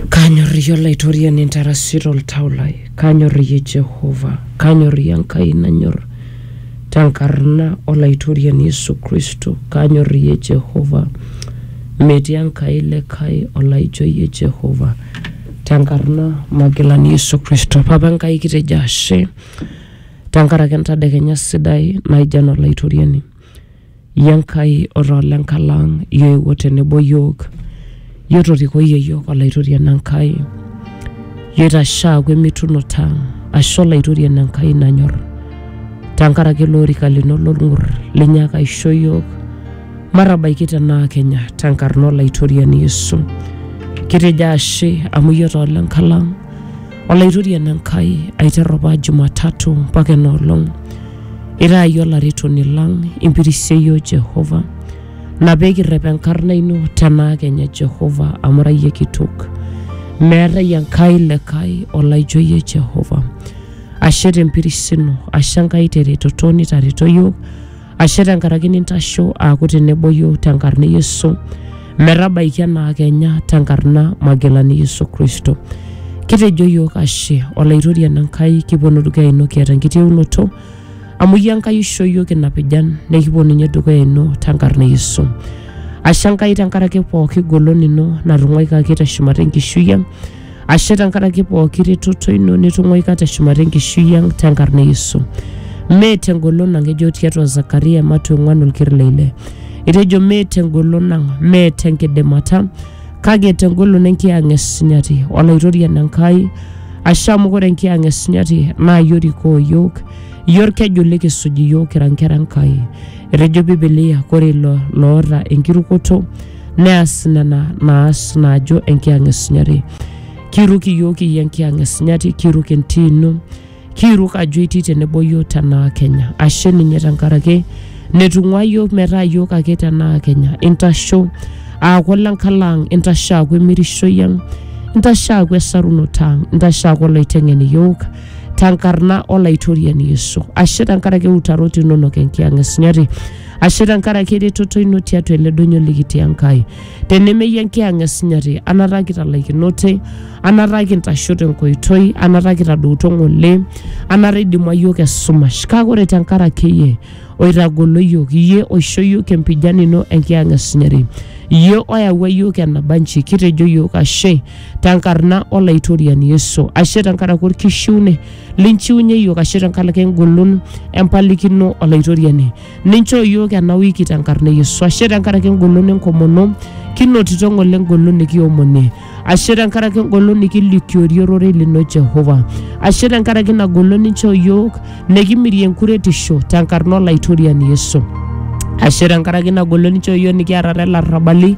Kanyorriyie Olaitoriani intarasi toltau lai, kanyorriyie Jehova, kanyorriyie Enkai nanyor tenkarna Olaitoriani Yesu Kristo, kanyorriyie Jehova. Metii Enkai likae olaijo iyie Jehova tenkarna Magilani Yesu Kristo. Papa Enkai kitejo ashe tenkaraki entadekenya sidai naijo ena Olaitoriani. Iyie Enkai otaa ole nkalang', iyie oewuo tenebo iyiook, iyie otorikoyie iyiook olaitoriani Enkai. Iyie oitashe aaku emitunut ang', ashe olaitoriani Enkai nanyor, tenkaraki ele orika lino lolng'ur linyaaka aisho iyiook. Matabaiki tenaa kenya tenkarna olaitoriani Yesu. Kitejo ashe amu iyie otaa ole nkalang'. Olaitoriani Enkai, aiterru apa Jumatatu mpaka ena olong, itaa iyie olaretoni lang, impirishe iyiook Jehova. Ina pee kirrep enkarna ino tenaa kenya Jehova amu ira iyie kitok. Meetae Enkai likae olaijo iyie Jehova. Ashe tempiris ino, ashe Enkai teretoto nitareto iyiook ashe tenkaraki nintasho aaku tenebo yiok tenkarna e Yesu metabaiki enaa kenya tenkarna Magilani Yesu Kristo. Kitejo yiok ashe Olaitoriani Enkai kiponu dukuya ino kiata enkitieunoto amu iyie Enkai oishoo yiok ina pijan nekiponunye dukuya ino tenkarna e Yesu. Ashe Enkai tenkaraki pooki golon ino natung'uaikaki teshumata enkishui ang' ashe tenkaraki pooki retoto ino nitung'uaika teshumata enkishui ang tenkarna e yesu mee tengolon ang ejo tiatua zakaria matu ong'uan olker le ile etejo mee tengolon ang mee tenkidimata kake tengolon enkiyang'et sinyati olaitoriani enkai ashe amu ore enkiyang'et sinyati naa iyie orikoo iyiook iyie orkeju likisuj iyiook kira nkera enkai etejo bibilia kore ilo loota enkirukoto neas nena naas naajo enkiyang e sunyati kiiruk iyiook iyie enkiyang e sunyati kiiruk entii ino kiiruk ajo itii tenebo iyiook tenaa kenya ashe ninye tenkaraki netung'ua iyiook metaa iyiook ake tenaa kenya intasho aaku lenkalaang intasho aaku emirishoi ang intasho aaku esarunoto ang intasho aaku oloiteng'en iyiook tenkarna olaitoriani yesu ashe tenkaraki iutarot inonok enkiyang e sunyati ashe tenkaraki eretoto ino tiatua ele donyo likitii Enkai. Tenemeyie enkiyang'a esinyati, anataa kitalaikinote, anataa kintasho tenkoitoi, anataa kitadouto ng'ole, anataa idimua iyiook esumash. Kake ore tenkaraki iyie oitagolo iyiook, iyie oisho iyiook empijan ino enkiyang'a esinyati, iyie oyawua iyiook enabanji, kitejo iyiook ashe tenkarna Olaitoriani Yesu, ashe tenkaraki orkishiune linchiunye iyiook ashu tenkaraki engolon empalikino olaitoriani ninchoo iyiook ena wiki tenkarna e yesu ashe tenkaraki engolon enkomono kinotito ng'ole engolon nikiomonie ashe tenkaraki engolon nikilikiorie ororei lino jehova ashe tenkaraki ina golon ninchoo iyiook nikimirie enkuretisho tenkarna olaitoriani yesu ashe tenkaraki ina golon ninchoo iyiook nikiarare ilarrabali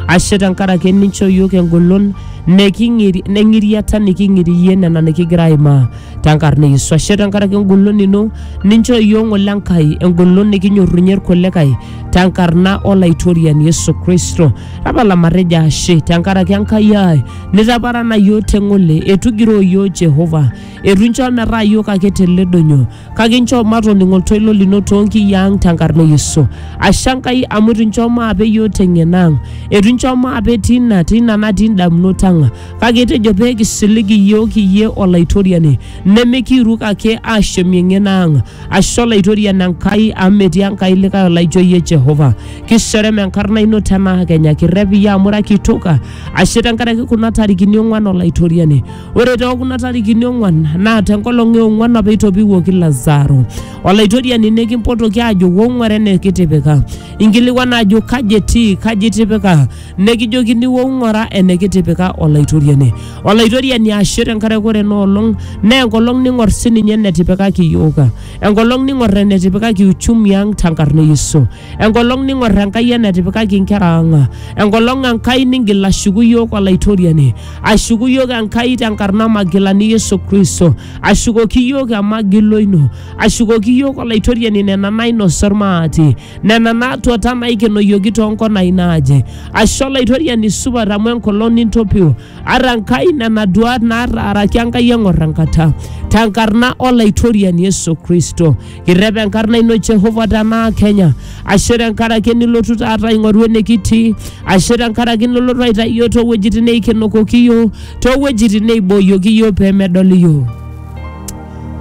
ashe tenkaraki nincho iyiook engolon neking'iri- neng'iriata niking'irie nena nikigira aimaa tenkarna e Yesu ashe tenkaraki engolon ino nincho iyiook ng'ole Enkai engolon nikinyorrunye irkulikae tenkarna olaitoriani Yesu Kristo tapala matejo ashe tenkaraki Enkai ai nitaparana iyiook teng'ole etugiroo iyiook Jehova etu incho metaa iyiook ake teledonyo kake inchoo matoning oltoilo lino toonkiyi ang tenkarna e Yesu. Ashe Enkai amu eitu inchoo maape iyiook teng'eno ang, eitu inchoo maape tina tina natii indamunot ang, kake itejo pee kisilig iyiook iyie Olaitoriani, nemikiiruk ake aashemie eng'eno ang. Ashe Olaitoriani Enkai amu metii Enkai likae olaijo iyie Jehova. Kiserem enkarna ino tenaa kenya, kirrep iyie amu ira kitok. Ashe tenkaraki kuna tarikini ong'uan Olaitoriani. Ore too kuna tarikini ong'uan naa tenkolong e ong'uan apa eitopiwuoki Lazaro. Olaitoriani nikimpotoki aajo wong'uare enikitipika. Inkilikuana ajo kaji etii, kaji itipika? Nekijokini wong'uara enikitipika Olaitoriani. Olaitoriani ashe tenkaraki ore ena olong naa enkolong ning'or sininye enetipikaki iyiook. Enkolong ning'or enetipikaki uchumi ang tenkarna e Yesu. enkolong ning'or enkai enetipikaki inkera ang enkolong enkai ningil ashuku yiok olaitoriani ashuku yiok enkai tenkarna magilani yesu kristo ashukoki yiok emagilo ino ashukoki yiok olaitoriani nena nainosa ormaati nena naatuata naikenoyioki toonkonai naaje ashe olaitoriani supat amu enkolong nintopiu ata enkai nena duat naataaraki enkai eng'or enkata tenkarna olaitoriani yesu kristo Irrep enkarna ino Jehova tenaa Kenya. Ashe tenkaraki nilotu taata aing'oru enikitii. Ashe tenkaraki nilotu aitayu iyiook toowuejitin neikenokoki iyiook, toowuejitin neibooyioki iyiook pee medol iyiook.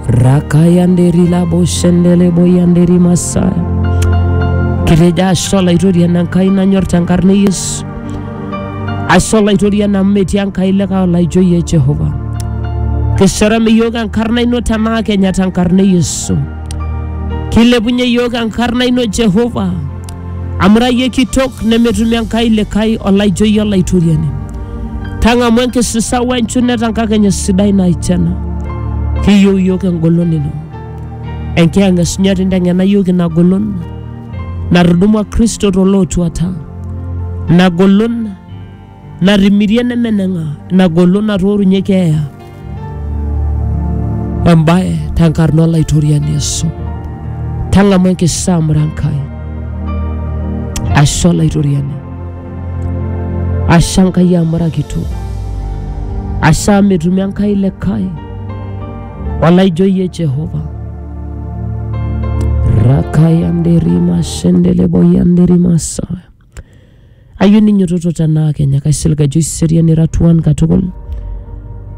Rakayanderi labo shendele boyanderi masaya. Kitejo ashe olaitoriani Enkai nanyor tenkarna e Yesu. Ashe olaitoriani amu metii Enkai likae olaijo iyie Jehova. Kisharam iyiook enkarna ino tenaa kenya tenkarna e Yesu. Kilepunye iyiook enkarna ino Jehova amu ira iyie kitok nemetumi Enkai likae olaijo iyie olaitoriani. Tang'amu enkisisa we nchunet enkakenya sidai naijo ena. Kiyieu iyiook engolon ino. Enkiyang'et sunyati inteng'ena iyiook ina golon. natudumua kristo tolootuata ina golon natimirie nemeneng'a ina golon natoorunye keeya embaye tenkarna olaitoriani yesu tang'amu enkisamura enkai ashe olaitoriani ashe enkai amurakito ashe amu etumi enkai likae olaijo iyie jehova rakayanderima shendeleboyanderimasa ayieu ninyototo tenaa kenya kaisilig ajo iserian ira tuan katukul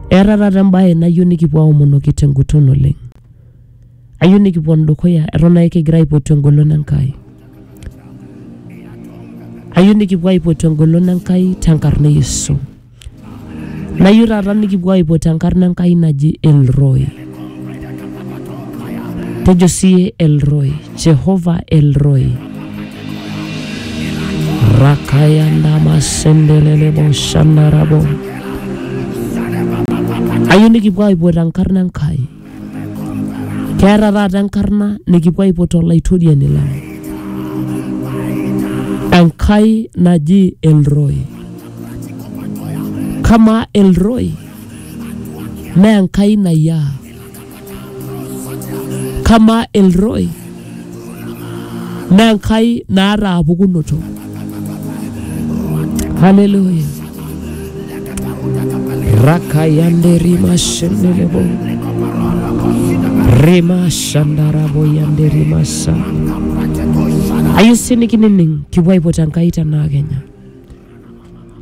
eeta taata embaye nayieu nikipuo aomonoki tenguton oleng ayieu nikipon dukuya eton ake kigira aipotu engolon enkai ayieu nikipuo aipotu engolon enkai tenkarna e yesu Nayieu taata nikipuo aipot enkarna Enkai naji Elroy. Tejo siye Elroy, Jehova Elroy. Rakaya ndama sendelele bo shandarabo. Ayieu nikipuo aipot enkarna Enkai. Keeta taata enkarna nikipuo aipot olaitoriani lang. Enkai naji Elroy. Kamaa Elroy naa Enkai nayiaa. Kamaa Elroy naa enkai naata apukunoto haleluya rakayanderimashindiribo rimashandaraboyanderimasa ayieu sii nikinining kipuo aipot enkai tenaa kenya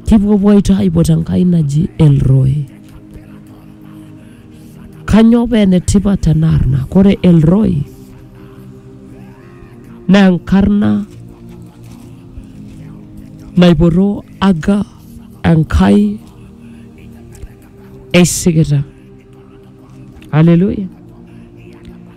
kipuopuo aito aipot enkai naji elroy Kanyoo paa enetipat ena arna? Kore El Roy naa enkarna naipotoo aga enkai esikita. Hallelujah.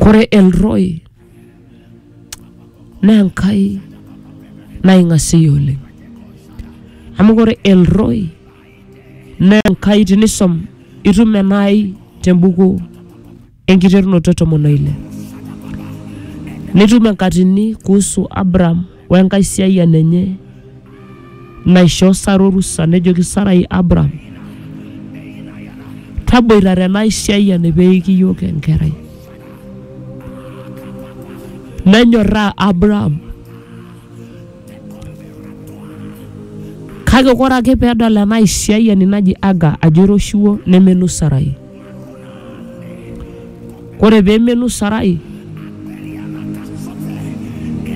Kore Elroy naa Enkai naing'asie oleng. Amu kore Elroy naa Enkai tinisom itum enaai tembuku enkiterunoto e tomon oile. Nitum enkatini kuhusu Abraham we nkaisiayian enye naishoo Sara orusa nejoki Sarai Abram, taboitare ena aisiayiani pee eiki iyiook enkerai. Nenyorraa Abram. Kake ore ake pee edol ena aisiayiani naji Aga ajo eiroshiwuo nemelo Sarai. Ore pee emenu Sarai,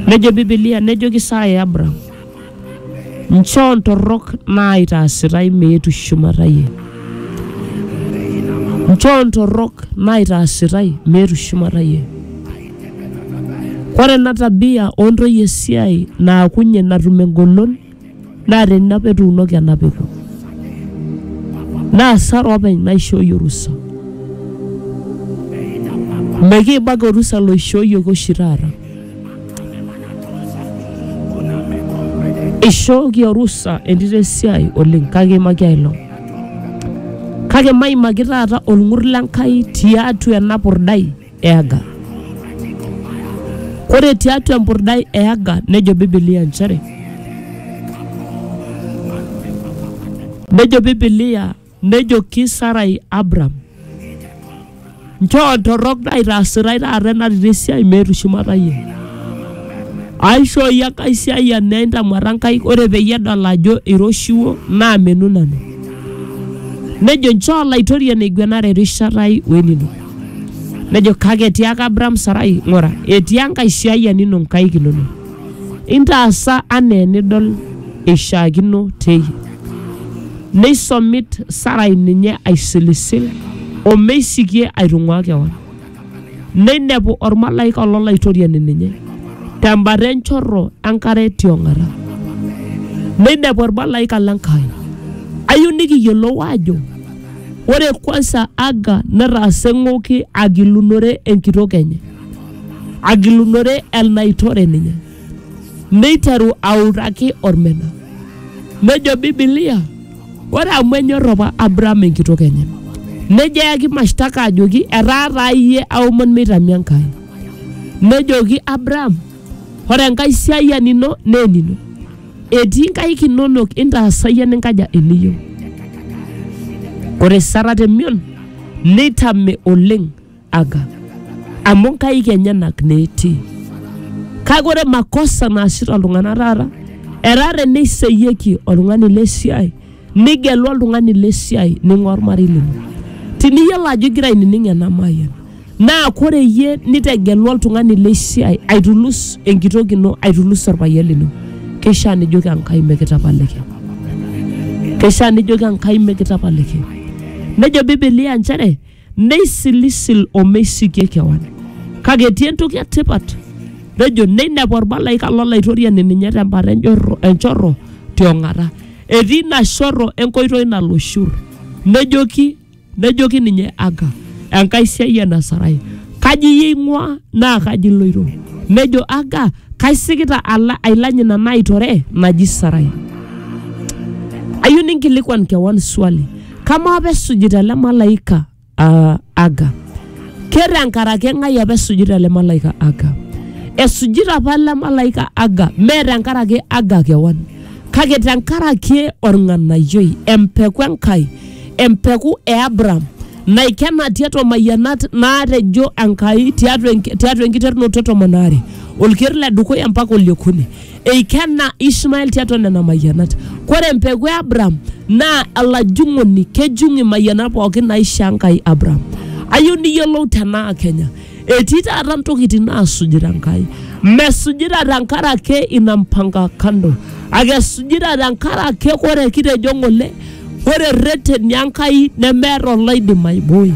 nejo Biblia nejoki Sarai Abraham, nchoo ntorrok naaitaasitai meetu shumata iyie. Nchoo ntorrok naaitaasitai meetu shumata iyie. Ore ena tabia oo ntoyie esiai naakunye natum engolon naa teni apa etuunoki ena peku naa asara openy naishooyie orusa mekiibak orusa loishooyioki oshi taata ishooki orusa entito esiai oleng kake imaki ailong kake maimaki taata olng'ur lenkai tiatua ena purdai e Aga. Ore tiatua empurdai e Aga nejo Bibilia nchere nejo Bibilia nejoki Sarai Abram nchoo ntorrok naitaasitai taata enatito esiai meetu shumata iyie aishoo iyie enkae siai enaa intamuata nkaik ore peyie edol ajo iroshiwuo naamenu nanu nejo nchoo olaitoriani aiguenare erishata ai wenino Nejo kake etiaka Abraham Sarai, ng'ura, etii Enkai siayiani ino nkaik inono. Intaasa anaa enidol eishaakino teyie. Neisomit Sarai ninye aisilisil o meisikie aitung'uaa kewan. Neinepu olmalaika lo Laitoriani ninye tembata enchorro enkare tiong'ata. Neinepu olmalaika le Nkai. Ayieu nikiyiolou aajo Ore kwansa Aga netaasa eng'oki agilunore enkitok enye, agilunore enaitore ninye, neiteru autaki olmena. Nejo Bibilia, ore amu enyor apa Abraham enkitok enye, nejo eyaki mashtaka ajoki etaa taa iyie aomon meitami Enkai. Nejoki Abraham, ore Enkai siayian ino naa enino. etii nkaik inonok intaasai eninkaja eniyieu ore sara temion neitame oleng aga amu nkaik enyenak naa etii kake ore makosa naasita iltung'anak taata etaa teneiseyieki oltung'ani le siai nigelu oltung'ani le siai ning'ua ormarei lino tiniyiolo ajo igira ainining ena mayian Naa kore iyie nitegelu oltung'ani le siai aitulus enkitok ino aitulus orpayian lino keishaa nijoki Enkai mikitapaliki keishaa nijoki Enkai mikitapaliki nejo Biblia nchere meisilisil omeisikie kewan kake etii entoki etipat nejo neinepu ormalaika lolaitoriani ninye tembata enjorro, enchorro tiong'ata etii ina shorro enkoitoi nalo shur nejoki Nejoki ninye Aga, Enkai siai ena Sarai, kaji iyie ing'ua naa kaji iloito? Nejo Aga, kaisikita ala ailany ina naitore naji Sarai. Ayieu ninkilikwan kewan swali, kamaa apa esujita ele malaika uh, Aga? Ke tenkaraki eng'ai apa esujita ele malaika Aga? Esujita apa ele malaika Aga, mee tenkaraki Aga kewan, kake tenkaraki orng'anayioi, empeku Enkai empeku e Abraham naikena tiatua mayianat naatejo Enkai tiatua enk- tiatua enkiterunoto e tomon aare olker le dukuya mpaka oliokuni eikena Ishmael tiatua nena mayianat. Kore empeku e Abraham naa olajung'oni kejung' imayianat pookin naishoo Enkai Abraham. Ayieu niyiolou tenaa Kenya Etii taata ntokitin naasujita Enkai. Mesujita tenkaraki ina mpango kando. Ake esujita tenkaraki ore kitejo ng'ole, ore erreteni Enkai nemeeta oloidim aiboi.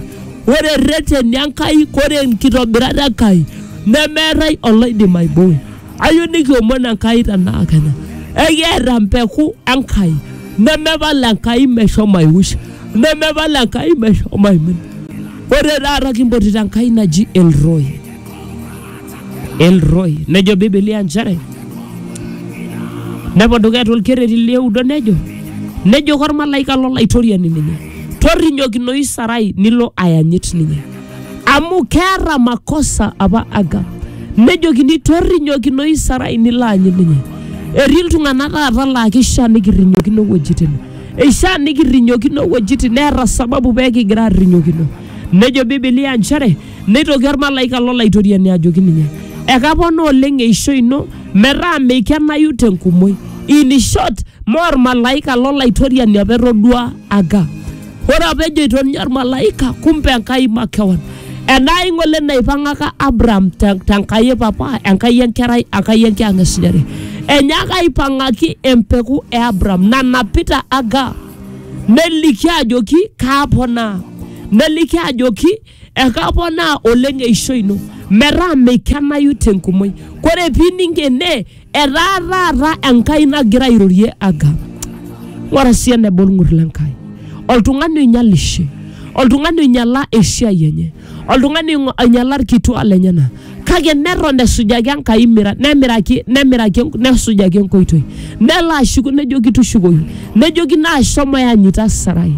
Ore erreteni Enkai, ore enkitobirat Enkai nemeetai oloidim aiboi. Ayieu nikiomon Enkai tenaa kenya ekiata mpeku Enkai nemepal Enkai meshomo aiush nemepal Enkai meshomo aimin. Ore taata kimpotito Enkai naji El Roy. El Roy nejo Biblia nchere nepo dukuya tolkerreti lioudo nejo nejoki olmalaika lolaitoriani ninye torrinyokinoyu Sarai nilo ayanyit ninye. amu keeta makosa apa Aga nejokini torrinyokinoi Sarai nilo aanyu ninye. Etii iltung'anak taata laa keishaa nikirrinyokino wuejitin. Eishaa nikirrinyokino wuejitin neeta sababu pee kigira aarrinyokino. Nejo Biblia nchere neitoki olmalaika lo Laitoriani ajoki ninye ekapona oleng eishoi ino metaa meikenayu tenkumoi. In short, mee olmalaika lo Laitoriani apa etoduaa Aga. Ore apa ejoito ninye olmalaika, kumbe Enkai makewan. Enaa ing'ole naipang'aka Abraham te te Enkai e papa, Enkai enkerai, Enkai enkiyang'esunyare. Enyaaka aipang'aki empeku e Abraham nanapita Hagar neliki ajoki kaaponaa. Neliki ajoki ekaponaa oleng eishoi ino metaa meikenayu tenkumoi kore pining ene etaa taata enkai nagira airorie agam ng'ora sii eneba olng'ur le nkai oltung'ani oinyalishe oltung'ani oinyala esiai enye oltung'ani oing'o- oinyala irkituaa lenyena kake neton esujaki enkai mira nemiraki nemiraki enk- nesujaki enkoitoi nelo ashuku nejoki tushukoyu nejokino ashomo yanyita sarai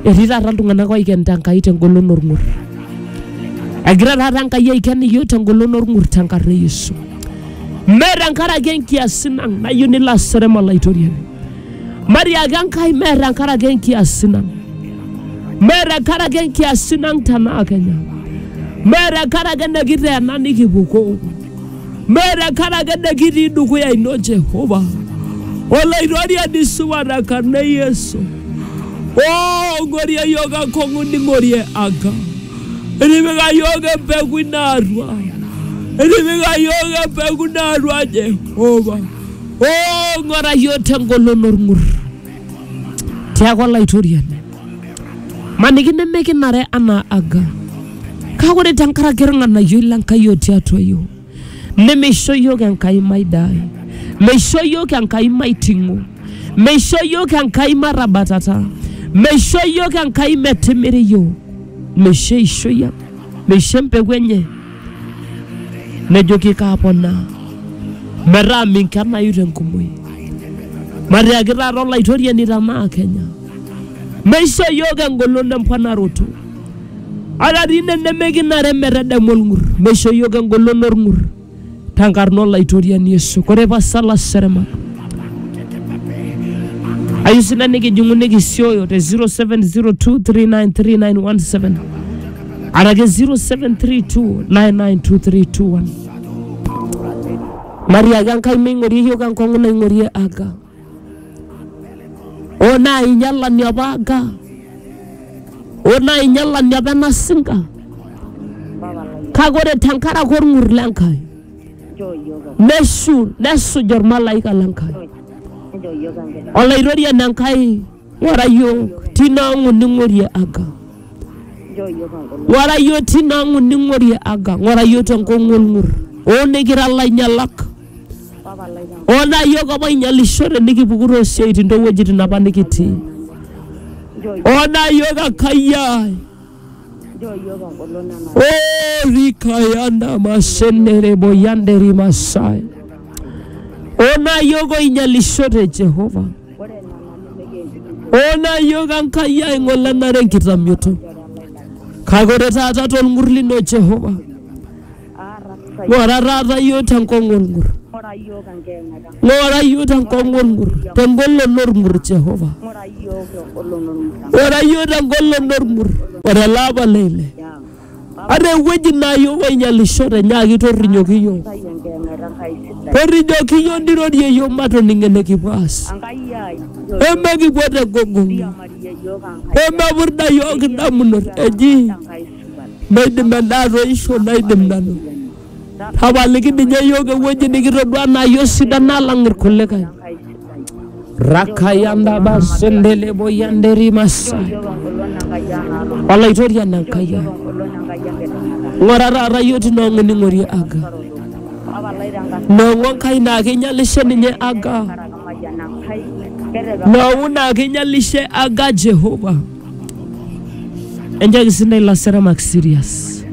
Etii taata iltung'anak oikenita Enkai tengolon orng'ur. Egira taata Enkai aiken iyiook tengolon orng'ur tenkarna e Yesu. Mme tenkaraki enkiasin ang nayieu nilo aserem olaitoriani. Matiaki Enkai mme tenkaraki enkiasin ang. Mme tenkaraki enkiasin ang tenaa Kenya. Mme tenkaraki enekiteena nikipukoo. Mee tenkaraki nikitii dukuya ino Jehova. Olaitoriani supat tenkarna e Yesu. Oo ng'orie iyiook enkong'u ning'orie Enkai. Itipika iyiook empeku ino atua. Itipika iyiook empeku ino atua Jehova. Oo ng'ora iyiook tengolon orng'ur. Tiaku olaitoriani. maniki nemekinare anaa aga kake ore tenkaraki irng'anayioi lenkai otii atua yiok nemeisho yiok enkai maidai meisho yiok enkai maiting'o meisho yiok enkai matabatata meisho yiok enkai metimiri yiok meisho eishoi ang meisho empeku enye nejoki kaaponaa metaa minkenayu tenkumoi matiaki taata olaitoriani tenaa kenya meisho iyiook engolon emponaroto ata dii ine nemekinare metadamu olng'ur meisho iyiook engolon olng'ur tenkarna olaitoriani yesu kore pasala serema ayieu sina nikijing'u nikisioyo te 0702393917 ara ke 0732992321 mariaga nkai meing'orie yoga nkong'u naing'orie aga o nainyalani apa aga o nainyalani apa ena singa kake ore tenkaraki orng'ur le nkai neshu nesuj ormalaika le nkai olaitoriani enkai Wara yiok tinaangu ningorie aga. Wara yiok tinaangu ningorie aga. Ngora yiok tenkong'u olng'ur. Oo nikira lainyalak. Oo naa yiok apa oinyalishote nikipuku too siaitin too wuejitin apa nikitii. Oo naa yiok Enkai ai. Oo rikayanda mashenere boyanderi masai. Oo naa yiok oinyalishote Jehova. Oo naa iyiook Enkai ai ng'ole enare enkitamioto. Kake ore taata tolng'ur lino Jehova, ng'ora taata iyiook tenkong'u olng'ur. Ng'ora iyiook tenkong'u olng'ur, tengolon olng'ur Jehova. Ng'ora iyiook tengolon olng'ur. Ore ele apa le ile Ata ewueji naa iyiook oinyialishote nyaaki torrinyoki iyiook. Torrinyoki iyiook nirorie iyiook matoning enikipuo aas. Pee mekipuo te gogong'i. Pee mepurda iyiook indamunot eji meidim endaa atoisho naidim nanu. Tapaliki ninye iyiook ewueji nikitodua naa iyiook sidan alang irkulikae. Rakayandaba sendelebo yanderi masai. Olaitoriani Enkai ai. Ng'ura taata iyiook tine ong'ining'ori aga. Nong'u Enkai naa keinyalishe ninye aga. Nong'u naa keinyalishe aga Jehova. Enchooki sii ntae ilaseramak serious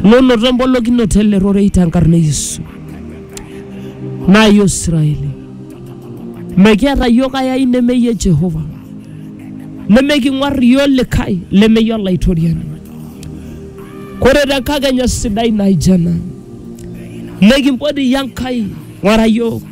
lonoto embolokinoto ele rorei tenkarna e Yesu. Naa iyiook Israeli mekiata iyiook ai ai nemeyie Jehova, nemeking'uar iyiook likae lemeyie Olaitoriani. Kore te nkakenya sidai naijo ena nikimpot iyie Enkai ng'ura iyiook.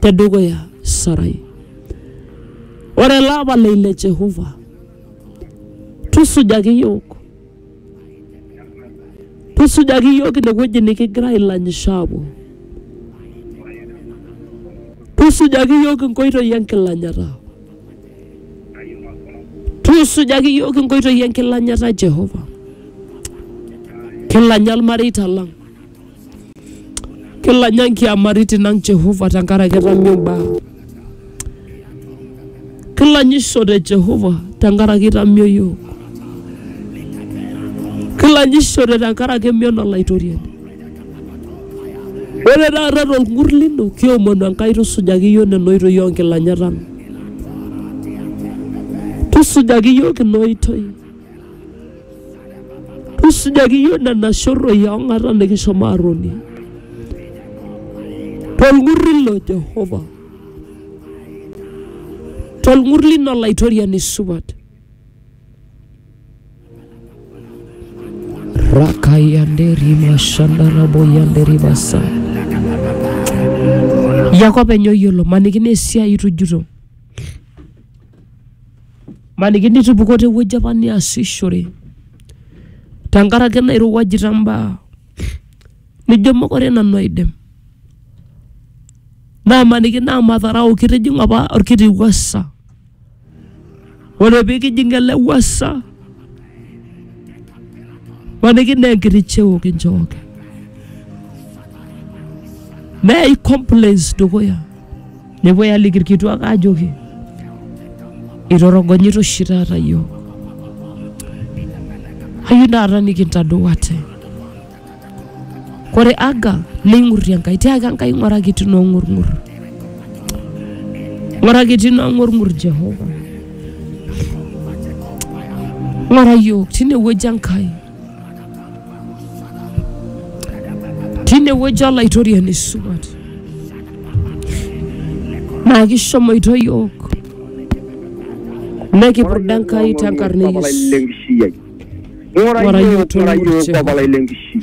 te dukuya Sarai. Ore ele apa le ile Jehova, tusujaki iyiook, tusujaki iyiook ine wueji nikigira ailanyisho aapuo, tusujaki iyiook inkoitoi enkilanyata, tusujaki iyiook inkoitoi enkilanyata Jehova, kilanya ilmareita lang. Kilanya nkiamaritin ang Jehova tenkaraki etami imbaa. Kilanyisho te Jehova tenkaraki itamio iyiook. Kilanyishore tenkaraki emion olaitoriani. Ore taata tolng'ur lino kiomonu Enkai tusujaki iyiook nena oitoi onkilanyat ang. Tusujaki iyiook ina oitoi. Tusujaki iyiook nena shorroi oo ng'ata nikishomo aatonie tolng'urri lo Jehova, tolng'urri lino Olaitoriani supat. Rakayanderi mashandaraboyanderi basa. Yako openy oyiolo, maniki naa esiai itujuto. Maniki nitupukuo te wueji apa niasishore tenkaraki nairowuajita imbaa nijo mokure nanu aidim. Naamaniki naa madharau kitijing'a apa olkiti wuasa. Ore pee kijing ele wuasa maniki naa enkiti cheo kinchooki. Neyai complaints dukuya. Nepuoi aliki irkituak ajoki itorogonyita oshi taata yiok. Ayieu taata nikintadou ate. Kore Aga neing'urrie Enkai tiaki Enkai ng'uraki etii noong'urng'ur. Ng'uraki etii noong'urng'ur Jehova. Ng'ura yiok tinewueji Enkai. tine wueji olaitoriani supat naa kishomoito yiok nekipurda Enkai tenkarna e Yesu. Ng'ura Ng'ura yiok, iyiook ng'ura iyiook, oltung'ani Papa lai lenkishui.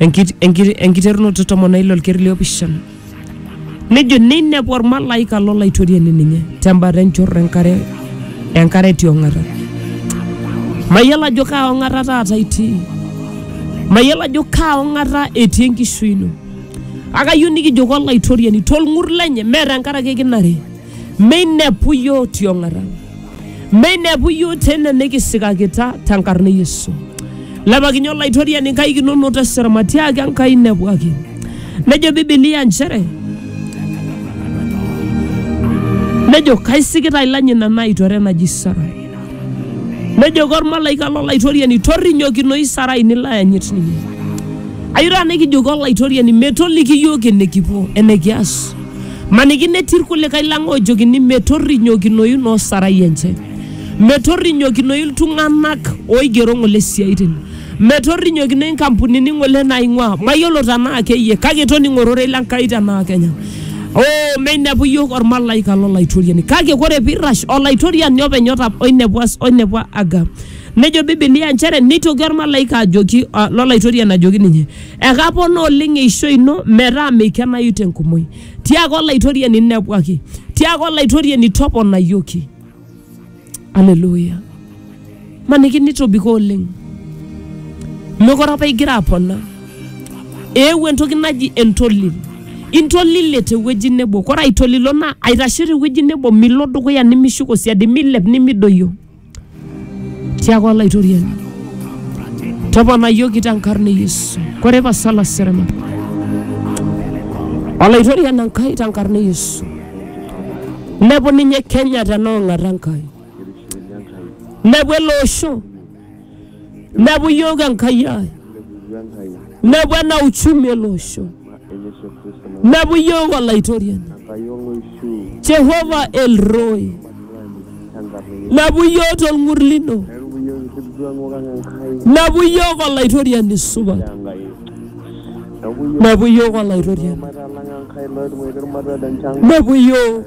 Enkit- enkit- enkiterunoto tomon oile olkeri liopishana nejo neinepu ormalaika lolaitoriani ninye tembata enchorro enkare enkare etii ong'ata mayiolo ajo kaa ong'ata taata itii mayiolo ajo kaa ong'ata etii enkishui ino akayieu nikijoki olaitoriani tolng'ur lenye mee tenkaraki kinare Meinepu iyiook tiong'ata. Meinepu iyiook tene nikisikakita tenkarna e Yesu. Lepakinye Olaitoriani nkaik inonok tesera matiaaki Enkai inepuaki. Nejo Bibilia nchere nejo kaisikita ilany ina naitore naji Sarai. Nejo kormalaika lolaitoriani torrinyokinoyu Sarai nilo ayanyit ninye. Ayieu taata nikijoki Olaitoriani metoliki iyiook enikipuo enikias. Maniki netii ilkulikae lang oojokini metorrinyokinoyu noo sarai enche, metorrinyokinoyu iltung'anak oigero ng'ole siaitin, metorrinyokinoyu nkampunini ng'ole naaing'uaa. Mayiolo tenaa keyie kake toning'o ororei le Nkai tenaa kenya. Oo meinepu iyiook olmalaika lo Laitoriani kake ore pee eirrash Olaitoriani openy oinepua Aga. Nejo Bibilia nchere neitoki olmalaika ajoki lo Laitoriani ajoki ninye. Ekaponaa oleng eishoi ino metaa meikenayu te nkumoi. Tiaaka Olaitoriani nepwaki, tiaaka Olaitoriani toponayioki. Alleluia! Maniki nitobiko oleng. Mekure apa igira apona. Eewuo entoki naji entolil. Intolile tewueji nebo. Kore aitolilo naa aitashe tewueji nebo milo dukuya nimishuko siadi, milep nimidoyio Tiaku Olaitoriani, toponayioki tenkarna e Yesu. Kore pasala serema. Olaitoriani Enkai tenkarna e Yesu. Nepu ninye Kenya tenaong'ata Enkai. Nepu ele osho nebu yook Enkai ai, nebu ena uchumi ele osho, nebu yook Olaitoriani Jehova El Roi, nebu yook t'olng'ur lino, nebu yook Olaitoriani supat, nebu yook Olaitoriani, nebu yook.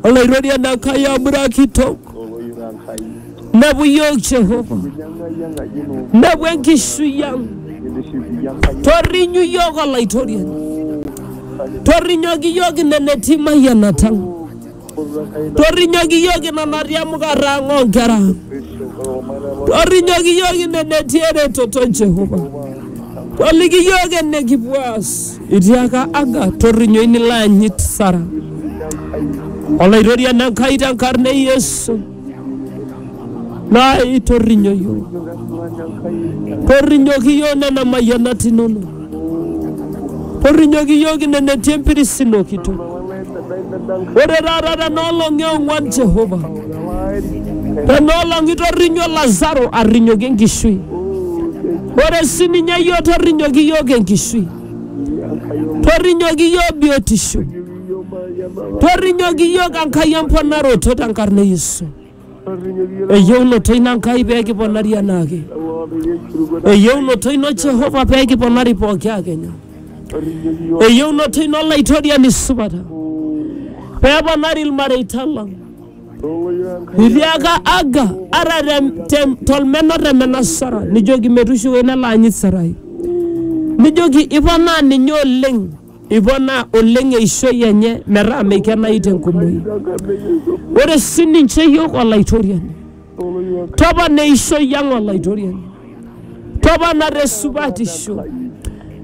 Olaitoriani Enkai amura kitok, nepu iyiook Jehova, nepu enkishui ang. Torrinyu iyiook Olaitoriani, torrinyoki iyiook ine netii imayianata ang. Torrinyoki iyiook ina natii emukata ang oonkera ang. Torrinyoki iyiook ine netii eretoto Jehova. Toliki iyiook enikipuo aas. Itiaka Aga, torrinyoi nilo anyit Sara. Olaitoriani Enkai tenkarna e Yesu, naai torrinyo iyiook. Torrinyoki iyiook nena mayianat inono. Torrinyoki iyiook ine netii empiris ino kitok. Ore taata tena olong e ong'uan Jehova, tena olong itorrinyo Lazaro arrinyoki enkishui. Ore sii ninye iyiook torrinyoki iyiook enkishui, torrinyoki iyiook biotisho, torrinyoki iyiook Enkai emponaroto tenkarna e Yesu. eyieunoto ino Enkai pee kiponari anaake, eyieunoto ino Jehova pee kiponari pooki akenya, eyieunoto ino Olaitoriani supata pee eponari ilmareita lang. Itiaka Aga ata te- te- tolmena otemena Sara nijoki metushuko ina laanyit Sarai, nijoki iponaa ninye oleng Eiponaa oleng eishoi enye metaa meikenayu te nkumoi. Ore si ninche iyiook Olaitoriani, topona eishoi ang Olaitoriani, topona te supatisho,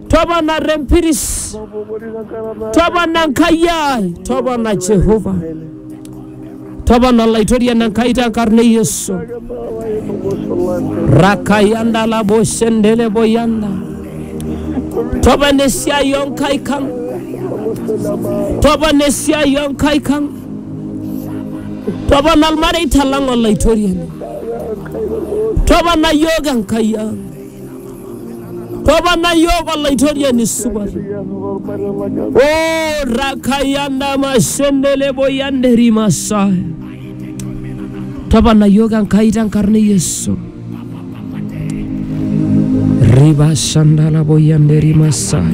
topona te mpiris, topona Enkai ai, topona Jehovah. Tapala Laitoriani Enkai tenkarna e Yesu. Rakayanda labo shendele boyanda. Tapala esiai oo nkaik ang. Tapala esiai oo nkaik ang. Tapala ilmareita lang Olaitoriani. Tapala iyiook Enkai ang. Toponai iyiook olaitoriani supat. O rakayana mashendelebo yanderi masai. Toponai iyiook Enkai tenkarna e Yesu. Riba shandalabo yanderi masai.